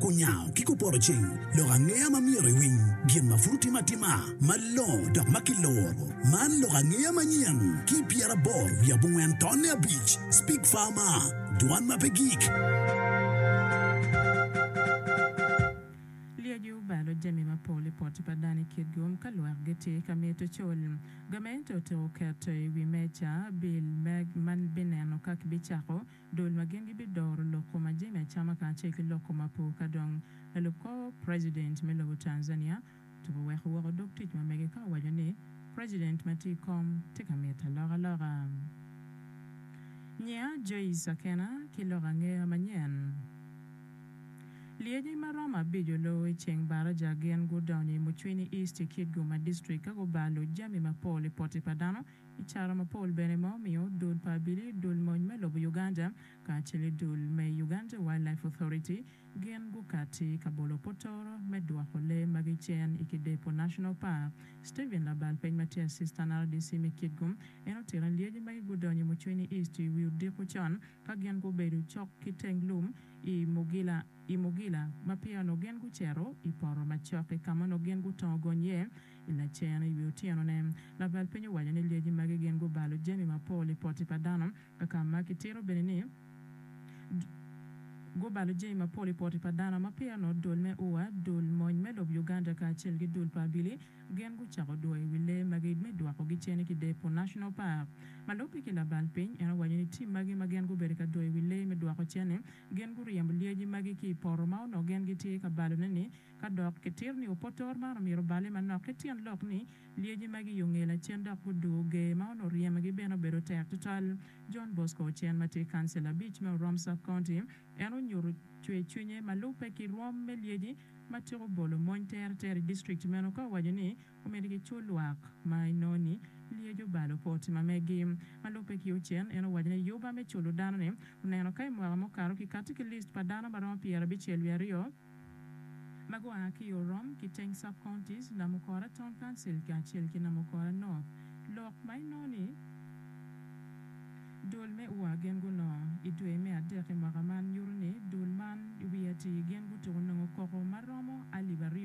Kunyango ki kupoto cing, lok angeya ma myero iwiny, gin ma pud otime atima malongo dok ma kiluro. Man lok angeya manyen ki pyeraboro wiye abongwen tonne abic, Speak Farmer, Dwan ma pe gik. Lyeci obalo jami mapol i poti pa dano i kit gum ka lwak gitye ka mito col. Gamente otiko keto i wi meja bil ma bineno ka kibicako dul ma gin gibidoro lok kom ma jami acama kacel ki lok kom apo ka dong lalub kor president me lobo Tanzania otuko weko woko dog tic ma mege ka owaco ni president ma tye i kom tye ka mito alokaloka. Nyiya Joyce Akena ki lok angeya manyen. Lyeci ma romo abico loo i ceng baraja gin gudonyo i Mucwini East i Kitgum ma district ka gubalo jami mapol i poti pa dano, I caro mapol bene ma omiyo dul pa abili, dul mony me lobo Uganda kacele dul me Uganda Wild Life Authority gin gukati ka bolo potoro me dwoko lee magi cen i Kidepo National Park. Steven labal peny ma tye Assistant RDC me Kitgum en otito ni lyeci magi gudonyo i Mucwenyi East i wi odiko con ka gin gubedo cok ki teng lum i Mugila i Mugila ma peya onongo gin gucito i poto macok i kama onongo gin gutongo gony iye I lacen, i wi otyenone, labal piny owaco ni lyeci magi gin gubalo jami mapol i poti pa dano, kaka ma kitito bene ni, gubalo jami mapol i poti pa dano ma pire nongo dul me ua, dul mony me lob Uganda kacel ki dul pa abili gin gucako dwoyo i wi lee magi me dwokogi cen ki Depo National Park. Ma lubbe ki labal piny, en owaco ni tim magi ma gin gubedo ka dwoyo i wi lee me dwoko cen-ni, gin guryemo lyeci magi ki i poto ma onongo gin gitye ka balone-ni, Ka dok kitito ni opotor man omyero oballe manok ki tyen lok ni lyeci magi i ongel acen dok guduwo ger ma onongo ryemagi bene obedo tek tutwal. John Bosco Ocen ma tye kancil abic me Orom South County en onyuto cwercwinye ma lubbe ki rwom me lyeci ma tika obolo mony teretere i district meno ka owaco ni omyero kicul lwak ma inongo ni lyeci obalo po oti ma megi. Ma lubbe ki Ocen en owaco ni yuba me culo dano ni oneno ka i mwaka mukato kikati ki list pa dano ma romo pyerabicel wiye aryo ma gua ki Orom ki teng sub-counties, Namukora Town Council kacel ki Namukora North, lok ma inongo ni dul me ua gin gunongo i dwe me adek i mwaka man nyuto ni dul man i wi atir gin gutuko nongo koko ma romo alip aryo.